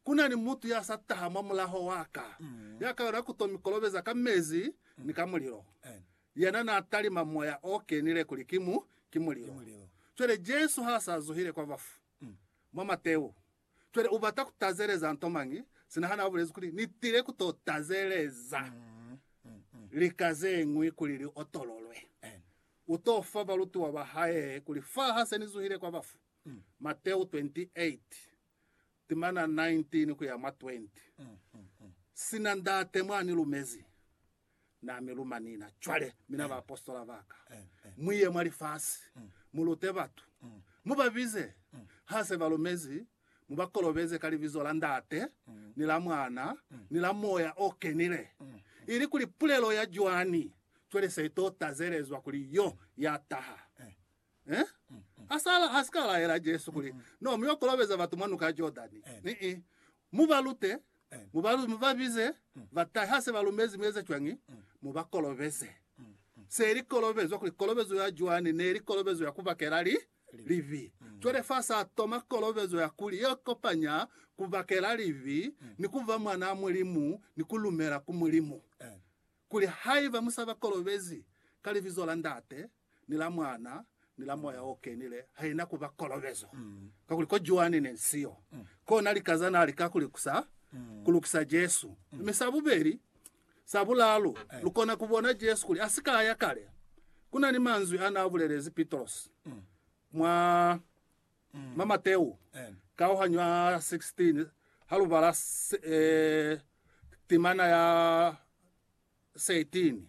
Ku na ni mutu ya sa taha mwa mulaho wa ka, ya ka yona ku to mi kolobeza ka mezi ni ka mulilo. Yena n'a talima moya o kenile kuli ki mu, ki mulilo. Cwale Jesu ha s'a zuhile kwa bafu, mwa Mateu, cwale u bata ku tazeleza nto mañi? Sina ha n'a bulezi kuli, Ni tile ku to tazeleza lika ze ñwi kuli li otololwe, u to fa balutiwa ba hae kuli, Fa ha se ni zuhile kwa bafu. Mateu 28. timana 19 kuya mwa 20, Sina Ndate mwa ni lumezi, Na mi luma nina. Cwale, mina baapositola ba Ka, mu ye mwa lifasi, mu lute batu, mu ba bize, ha se ba lumezi, mu ba kolobeze ka Libizo la Ndate, ni la Mwana, ni la Moya o Kenile, ilikuli pulelo ya Joani cwale se to tazelezwa kuli Yo ya taha. Eh? Ha sa, ha si ka laela Jesu kuli, No, mu yo kolobeza batu mwa nuka ya Jordani. Ni-i. Mu ba lute, mu ba, mu ba bize, ba tahe. Ha se ba lumezi, mu eze cwañi? Mu ba kolobeze. Se li kolobezwa kuli, kolobezo ya Joani ne li kolobezo ya ku bakela li, libi. Cwale fa sa toma kolobezo ya kuli ye kopanya ku bakela libi ni ku ba mwanaa Mulimu ni ku lumela ku Mulimu. Kuli, Haiba mu sa ba kolobezi ka Libizo la Ndate, ni la Mwana, ni la Moya o Kenile, haina ku ba kolobezo. Kakuli ko Joani ne si yo. Kona lika za na li ka ku likusa, ku lukisa Jesu. Mi sa bubeli, sa bulalu, lu kona ku bona Jesu kuli a si ka ya kale. Ku na ni manzwi a na bulelezi Pitrosi mwa, mwa Mateu, kauhanyo ya 16, ha lu bala se, eh, timana ya 13,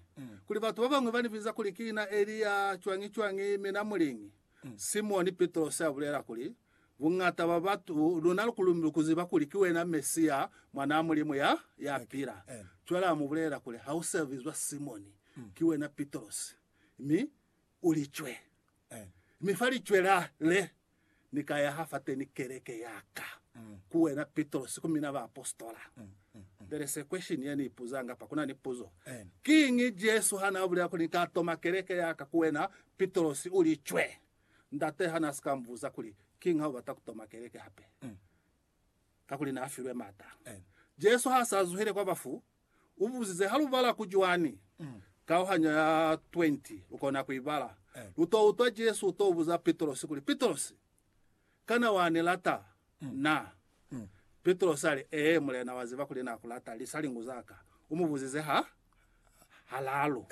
kuli batu babañwi banibiza kuli ki na Elia, cwañi-cwañi, mi na muliñi? Simoni Pitrosi abulela kuli, Buñata bwa batu, luna lukuziba kuli ki wena Mesia, Mwanaa Mulimu ya, ya pila. Cwale amubulelela kuli, Hausabizwa Simoni, ki wena Pitrosi, mi u licwe. Mi fa licwe la le Ni ka yaha fateni keleke ya ka, ku wena Pitrosi, ku mina baapositola. There is a question ye ni ipuzanga apa, ku na ni puzo. Kiñi Jesu ha na bulela kuli, Ni ka toma keleke ya ka ku wena Pitrosi, u li cwe? Ndate ha na si ka mbuza kuli, Kiñi ha u bata ku toma keleke hape? Kakuli na filwe mata. Jesu ha sa zuhile kwa bafu, U buzize, Ha lu bala ku cwani? Kauhanyo ya 20 lu kona ku i bala. Lu t'o utwa Jesu u t'o buza Pitrosi kuli, Pitrosi, kana wa ni lata na? Pitrosi a li, Ee, Mulena, wa ziba kuli na ku lata. Li sa lingu za ka. U mu buzize ha halalu.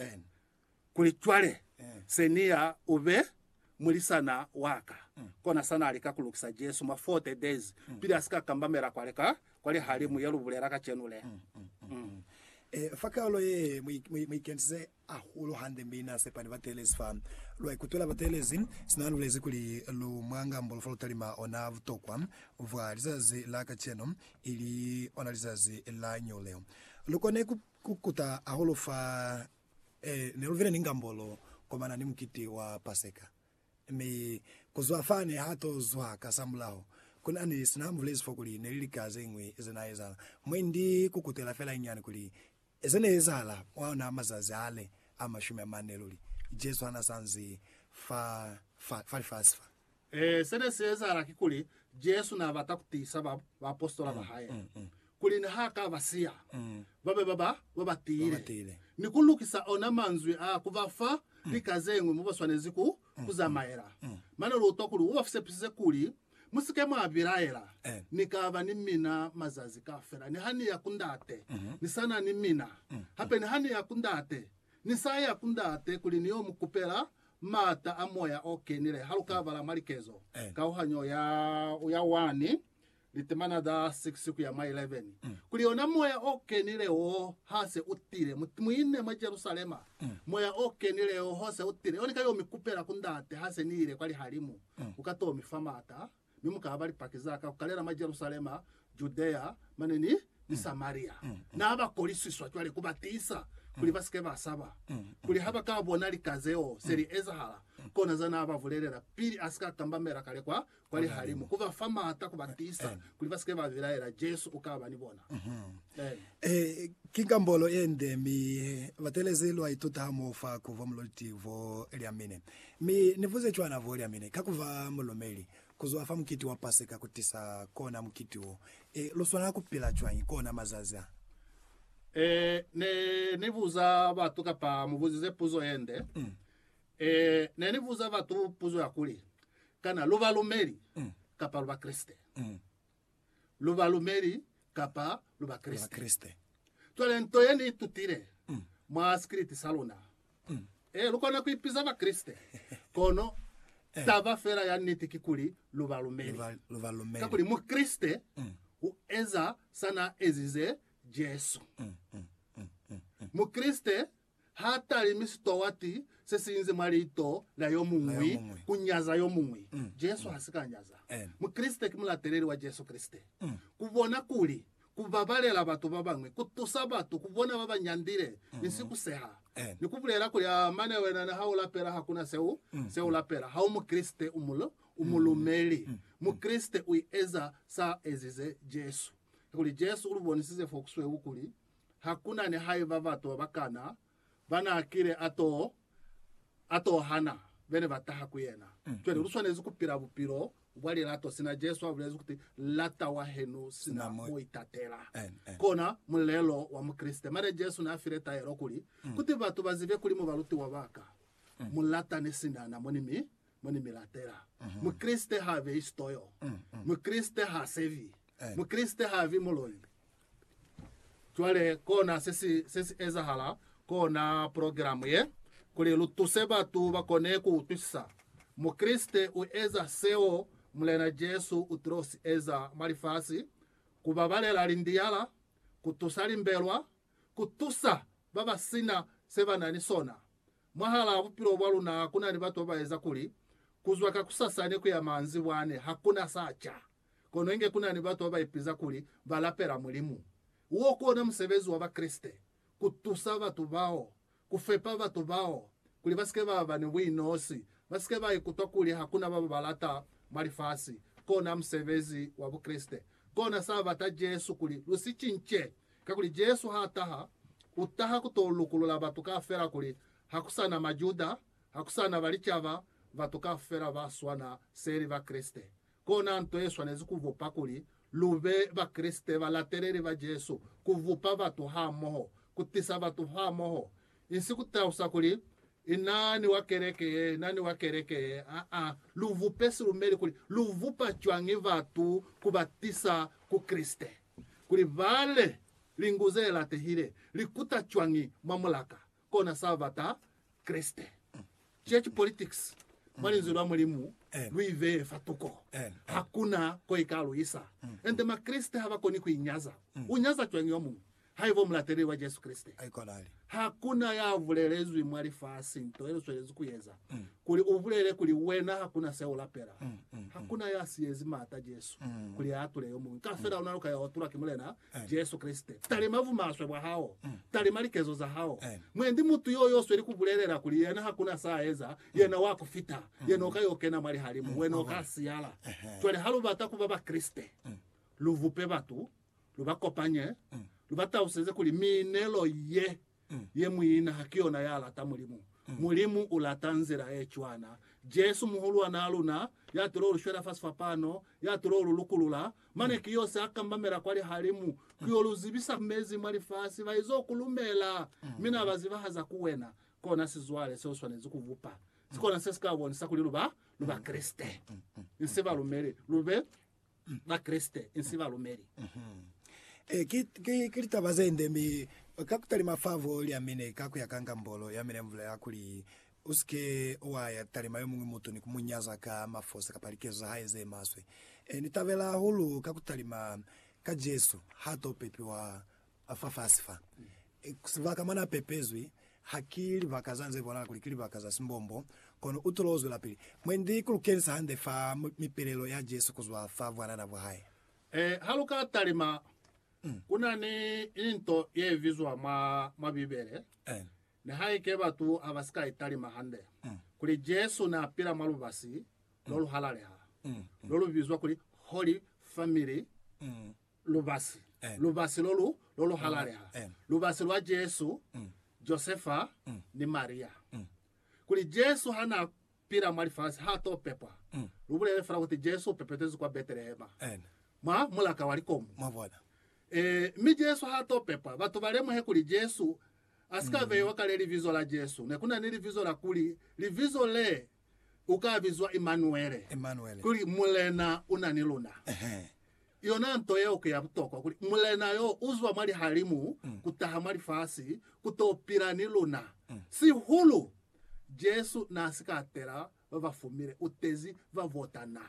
kuli, Cwale, Senior u be mulisana wa ka. Kona sa na lika ku lukisa Jesu mwa forty days pili a si ka kambamela kwale ka, kwa lihalimu ye lu bulela kacenu le. Mm. E, fa kaolo ye, mu, mu, mu ikentize hahulu hande mi na sepa ni bateelezi fa. Lu a ikutwela bateelezi, sina a lulezi kuli lu mwa ngambolo fa lu talima ona butokwa bwa lizazi la kacenu, ili ona lizazi la ño leo. Lu kone ku, ku kuta hahulu fa Ee, ne lu bile ni ngambolo komana ni mukiti wa Paseka. Mi ku zwa fa ne ha to zwa kasamulaho, ku na ni sina ha mbulezi fo kuli ne li lika ze ñwi ze na ezahala. Mwendi ku kutela fela inyinyani kuli, Ze ne ezahala mwa ona mazazi ale a mashumi a mane luli, Jesu ha na sa nzi fa, fa, fa lifasi fa. Ee, se ne si ezahala kikuli, Jesu n'a bata ku tiisa ba, baapositola ba hae kuli ni ha ka ba siya, ba be ba ba, ba ba tiile, tiile. ni ku lukisa ona manzwi a ku ba fa lika ze ñwi mo ba swanezi ku, ku zamaela. Mane lu utwa kuli u ba sepisize kuli, Mu si ke mwa bilaela, Eh. Ni ka ba ni mina mazazi kaufela. Ni ha ni ya ku Ndate, ni sa na ni mina. Hape ni ha ni ya ku Ndate, ni sa ya ku Ndate kuli ni yo mu kupela Maata a moya o kenile ha lu ka bala mwa likezo. Kauhanyo ya ya 1, litemana za 6 ku ya mwa 11, kuli ona moya o kenile wo ha se u tile, mu, mu ine mwa Jerusalema, moya o kenile wo ha se u tile, yo ni ka yo mi kupela ku Ndate ha se ni ile kwa lihalimu, u ka to mi fa maata. mi mu ka ba Lipaki za ka ku kalela mwa Jerusalema, Judea, mane ni, ni Samaria. Na ba kolisiswa cwale ku ba tiisa kuli ba si ke ba saba, kuli ha ba ka bona lika zeo se li ezahala. Kona za na ba bulelela pili a si ka kambamela kale kwa, kwa lihalimu, ku ba fa m'ata, ku ba tiisa kuli ba si ke ba bilaela. Jesu u ka ba ni bona. Amen. Ee, ki kambolo ye nde, mi batelezi lwa ituta hamoho fa ku bwa muloliti bo lia mine. Mi Ni buze cwana bo lyamine ka kuba mulumeli, kuzwa fa mukiti wa Paseka kutisa kona mukiti wo. E, lu swanela kupila cwañi kona mazazi a? E, Ne ni buza batu, kapa mu buzize puzo yende, e, Ne ni buza batu puzo ya kuli, Kana lu balumeli kapa lu Bakreste? lu balumeli kapa lu Bakreste. Cwale nto ye ni itutile mm. mwa sikiliti sa luna, mm. e, lu kona ku ipiza Bakreste, kono eh. taba fela ya niti kikuli lu balumeli. Kakuli Mukreste mm. u eza sa na ezize Jesu. Mukreste ha talimi sitowati se si inze mwa liito la yo muñwi ku nyaza yo muñwi. Jesu ha si ka nyaza. Mukreste ki mulateleli wa Jesu Kreste. Ku bona kuli ku babalela batu ba bañwi ku tusa batu ku bona ba ba nyandile ni sikuseha, ni ku bulela kuli, Aa, mane wena niha u lapela ha ku na se u se u lapela, ha u Mukreste, u mu u mulumeli. Mukreste u eza sa ezize Jesu. Kakuli Jesu u lu bonisize fo ku sweu kuli Ha ku na ni haiba batu ba bakana ba n'a kile a t'o a t'o hana be ne ba taha ku yena. Cwale lu swanezi ku pila bupilo bwa lilato sina Jesu a bulezi kuti, Lata wahenu sina mo itatela. Kona mulelo wa Mukreste. Mane Jesu n'a file taelo kuli, Kuti batu ba zibe kuli mu balutiwa ba ka, mu latane sina na mo ni mi mo ni mi latela. Mukreste h'a beyi sitoyo. Mukreste h'a sebi. Mukreste h'a bi muloi. Cwale kona se si, se si ezahala kona progilamu ye, kuli lu tuse batu ba kone ku utwisisa. Mukreste u eza seo Mulena Jesu u tilo si eza mwa lifasi, ku babalela lindiyala, ku tusa limbelwa, ku tusa ba ba si na se ba na ni sona. Mwahalaa bupilo bwa luna ku na ni batu ba ba eza kuli, ku zwa kakusasani ku ya manzibwani ha ku na sa ca. Kono inge ku na ni batu ba ba ipiza kuli ba lapela Mulimu. Wo ku ona musebezi wa Bakreste, ku tusa batu bao, ku fepa batu bao kuli ba si ke ba ba ni buinosi, ba si ke ba ikutwa kuli ha ku na ba ba ba lata mwa lifasi. Kona musebezi wa Bukreste. Kona sa bata Jesu kuli lu si cince. Kakuli Jesu ha taha, u taha ku to lukulula batu kaufela kuli ha ku sa na Majuda, ha ku sa na Balicaba, batu kaufela ba swana seli Bakreste. Kona nto ye swanezi ku vupa kuli lu be Bakreste balateleli ba Jesu, ku vupa batu hamoho, ku tisa batu hamoho. Insi ku talusa kuli, I na ni wa keleke ye, i na ni wa keleke ye. Aa. Lu vupe silumeli kuli lu vupa cwañi batu ku ba tisa ku Kreste, kuli ba le lingu ze latehile, li kuta cwañi mwa mulaka. kona sa bata Kreste. Church politics, mwa Linzwi lwa Mulimu, lu i beye fa tuko. Ha ku na ko i ka lu isa. Ende Makreste ha ba koni ku i nyaza. U nyaza cwañi yo muñwi, haiba u mulateleli wa Jesu Kreste? Ha ku na ya bulelezwi mwa lifasi nto ye lu swelezi ku eza, kuli u bulele kuli wena ha ku na se u lapela. Ha ku na ya siyezi maata Jesu kuli a atule yo muñwi. Ka fela luna lu ka ya otulwa ki Mulena Amen. Jesu Kreste, talima vumaswe bwa hao, talima likezo za hao. Amen. Mwendi mutu yo yo sweli ku bulelela kuli yena hakuna sa eza, yena wa ku fita, yena uka yo kena mwa lihalimu, wena uka siyala. Ehe. Cwale ha lu bata kuba Bakreste, lu vupe batu, lu ba kopanye, lu ba taluseze kuli miinelo ye Ye muina ha ki yona ya lata Mulimu. Mulimu u lata nzila ye cwana. Jesu, Muhulwan'a luna, ya tulo lu shwela fa sifapano, ya tulo lu lukulula, mane ki yo se a kambamela kwa lihalimu ku yo lu zibisa mezi mwa lifasi. Ba izo ku lumela, mi na ba zibahaza ku wena. Kona sizwale se u swanezi ku bupa. Sikona se si ka bonisa kuli lu ba, lu Bakreste. Inse balumeli. Lu be Bakreste insi balumeli. Ki litaba zende, mi ka kutalima fa voo lya mine ka kuya ka ngambolo ya mine mvula ya kuli, Usike wa ya talima yomuñwi mutu ni kumunyaza ka mafosa kapa likezo za hae ze maswe. Ni tabela hahulu ka kutalima ka Jesu ha to pepiwa A Fafasi fa, sibaka mwa n'a pepezwi ha ki libaka za nze bonala kuli ki libaka za simbombo, kono u tolo zwelapili. Mwendi, ku lu kenisa hande fa mipelelo ya Jesu ku zwa fa bwanana bwa hae. Ee, ha lu ka talima, ku na ni into ye bizwa mwa, mwa Bibele, nihaike batu ha ba si ka i talima hande, kuli Jesu n'a pila mwa lubasi lo lu halaleha, lo lu bizwa kuli Holy Family lubasi, lubasi lo lu, lo lu halaleha, lubasi lwa Jesu, Josefa, ni Maria. Kuli Jesu ha na pila mwa lifasi, ha to pepwa. Lu bulele fela kuti Jesu u pepetezwi kwa Betelehema, mwa mulaka wa likomu. Mwabona? Ee, mi Jesu ha to pepwa, batu ba lemuhe kuli Jesu a si ka beiwa kale libizo la Jesu. Ne ku na ni libizo la kuli, Libizo le u ka bizwa Imanuele, Imanuele. kuli Mulena u na ni luna. Ehe. Yona nto yeo ki ya butokwa, kuli Mulena yo u zwa mwa lihalimu ku taha mwa lifasi ku to pila ni luna. Sihulu, Jesu n'a si ka tela ba ba fumile, u tezi ba bo tana.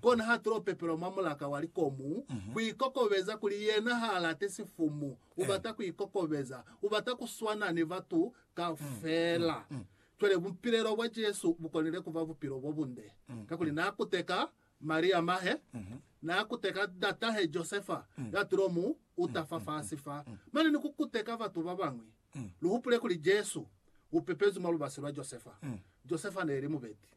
Kona ha tulo pepelwa mwa mulaka wa likomu, ku ikokobeza kuli yena h'a lati sifumu, u bata ku ikokobeza, u bata ku swana ni batu kaufela. Cwale, bupilelo bwa Jesu bu konile ku ba bupilo bo bunde, kakuli n'a kuteka Maria mahe, n'a kuteka ndatahe Josefa ya tulo mu uta fa fasi fa, mane ni ku kuteka batu ba bañwi. Lu hupule kuli Jesu u pepezwi mwa lubasi lwa Josefa. Josefa n'e li mubeti.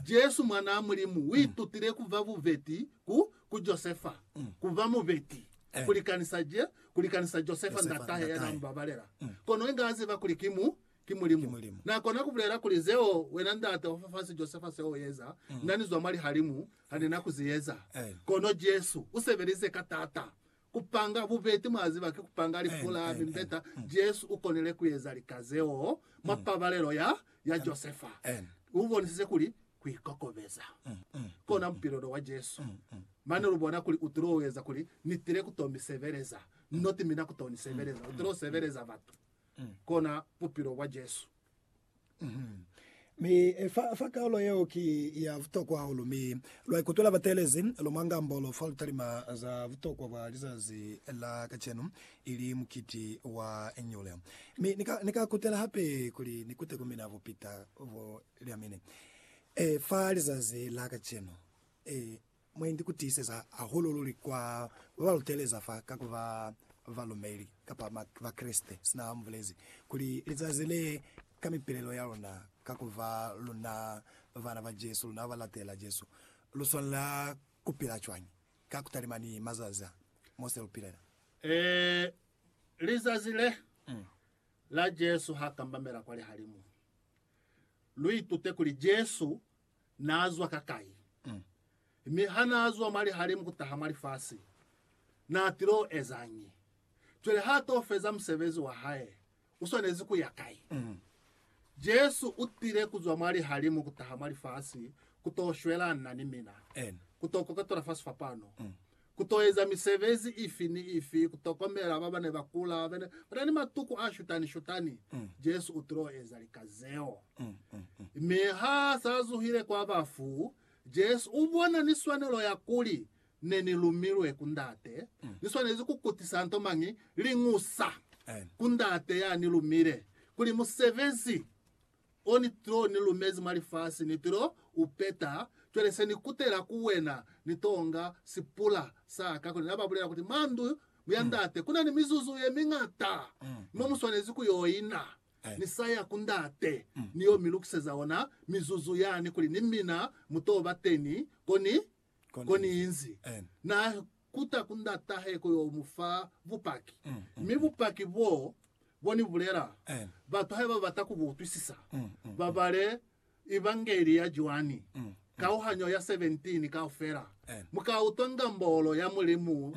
Jesu, Mwanaa Mulimu, u itutile ku ba bubeti ku, ku Josefa, ku ba mubeti, ku likanisa Je, ku likanisa Josefa ndatahe ya n'a mu babalela. Kono inge a ziba kuli ki mu, ki Mulimu. Na kona ku bulela kuli, Zeo wena ndate wa fafasi Josefa zeo u eza, na ni zwa mwa lihalimu ha ni na ku zi eza. Kono Jesu u sebelize ka t'ata ku panga bubeti, mwa ziba, ki ku panga lifu la mimbeta. Jesu u konile ku eza lika zeo mwa pabalelo ya, ya Josefa. U bonisize kuli ku ikokobeza kona bupilo lo wa Jesu. Mane lu bona kuli u tilo eza kuli, Ni tile ku to mi sebeleza. Niti mi na ku to ni sebeleza. U tilo sebeleza batu. kona bupilo bwa Jesu. Mi fa, fa kaulo yeo ki ya butokwa hahulu, mi lwa ikutwela bateelezi lu mwa ngambolo fa lu talima za butokwa bwa lizazi la kacenu, ili mukiti wa nyule. Mi ni ka, ni ka kutela hape kuli ni kute ku mina bupita bo lya mine, e, fa lizazi la kacenu, e, Mwa inzi ku tiiseza hahulu luli kwa ba ba luteleza fa ka ku ba balumeli kapa Bakreste sina ha mu bulezi kuli, Lizazi le, ka mipilelo ya luna, ka ku ba luna bana ba Jesu, luna ba latela Jesu, lu swanela ku pila cwañi ka ku talima ni mazazi a mo se lu pilela? Ee, lizazi le, la Jesu ha kambamela kwa lihalimu. Lu itute kuli Jesu naa zwa kakai, mi ha naa zwa mwa lihalimu kutaha mwa lifasi, naa tilo ezañi? Cwale ha to feza musebezi wa hae, u swanezi ku ya kai? Jesu u tile ku zwa mwa lihalimu kutaha mwa lifasi ku to shwelana ni mina, ku to koketola fa sifapano. Ku to eza misebezi ifi ni ifi, ku tokomela ba ba ne ba kula, ba na ni matuku a shutani-shutani, Jesu u tilo eza lika zeo. Mi ha s'a zuhile kwa bafu, Jesu u bona ni swanelo ya kuli, Ne ni lumilwe ku Ndate, ni swanezi ku kutisa nto mañi? Liñusa ku Ndate ya ni lumile, kuli musebezi O ni to ni lumezi mwa lifasi, ni to u peta. Cwale se ni kutela ku wena, ni tonga sipula sa ka. Kona ba bulela kuti, Mwa ndu ya Ndate kuna ni mizuzu ye miñata mo mu swanezi ku yo ina. Ni sa ya ku Ndate, ni yo mi lukiseza ona mizuzu yani kuli ni mina mu to ba teni ko ni Koniinzi na kuta ku ndatahe ku yo mu fa bupaki, mi bupaki boo bo ni bulela, batu haiba ba bata ku bu utwisisa, ba bale Evangeli ya Joani, kauhanyo ya 17 kaufela. Mu ka utwa ngambolo ya Mulimu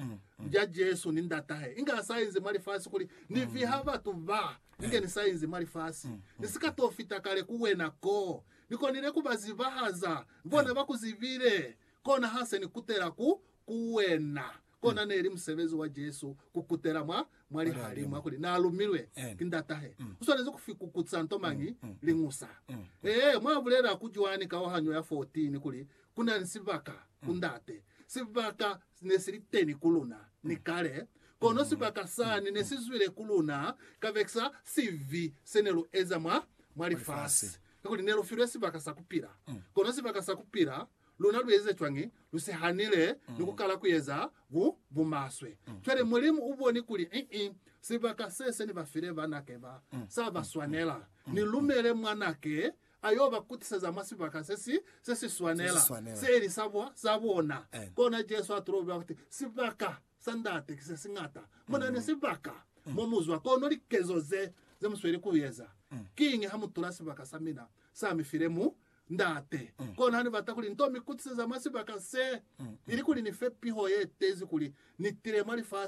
ja Jesu ni Ndatahe inge ha sa inzi mwa lifasi kuli, Ni viha batu ba inge ni sa inzi mwa lifasi. Ni si ka to fita kale ku wena koo Ni konile ku ba zibahaza, bona ba ku zibile, kona ha se ni kutela ku, ku wena. Kona neli musebezi wa Jesu ku kutela mwa, mwa lihalimu, ha kuli, Na lumilwe ki Ndatahe. U swanezi ku fikukusa nto mañi? Liñusa. Ee, mwa bulela ku cwani kauhanyo ya 14 kuli, Ku na ni sibaka ku Ndate, sibaka Si ne si li teni ku luna ni kale, kono sibaka sani ne si zwile ku luna kabekisa sibi se ne lu eza mwa, mwa lifasi. Kakuli ne lu filwe sibaka sa ku pila. Kono sibaka sa ku pila, luna lu eze cwañi? Lu si hanile ni ku kala ku eza bu, bu maswe. Cwale Mulimu u boni kuli, Ii, sibaka se se ni ba file banake ba, sa ba swanela. Ni lumele Mwanake a yo ba kutiseza mwa sibaka se si, se si swanela, se ili sa bo, sa bona. Kona Jesu a toloba ku ti, Sibaka sa Ndate ki se si ñata. Mu na ni sibaka mo mu zwa, kono likezo ze, ze mu sweli ku eza. Kiñi ha mu tula sibaka sa mina, sa mi file mu, Ndate? Kono ha ni bata kuli ni to mi kutiseza mwa sibaka se, ilikuli ni fe piho ye tezi kuli ni tile mwa lifasi,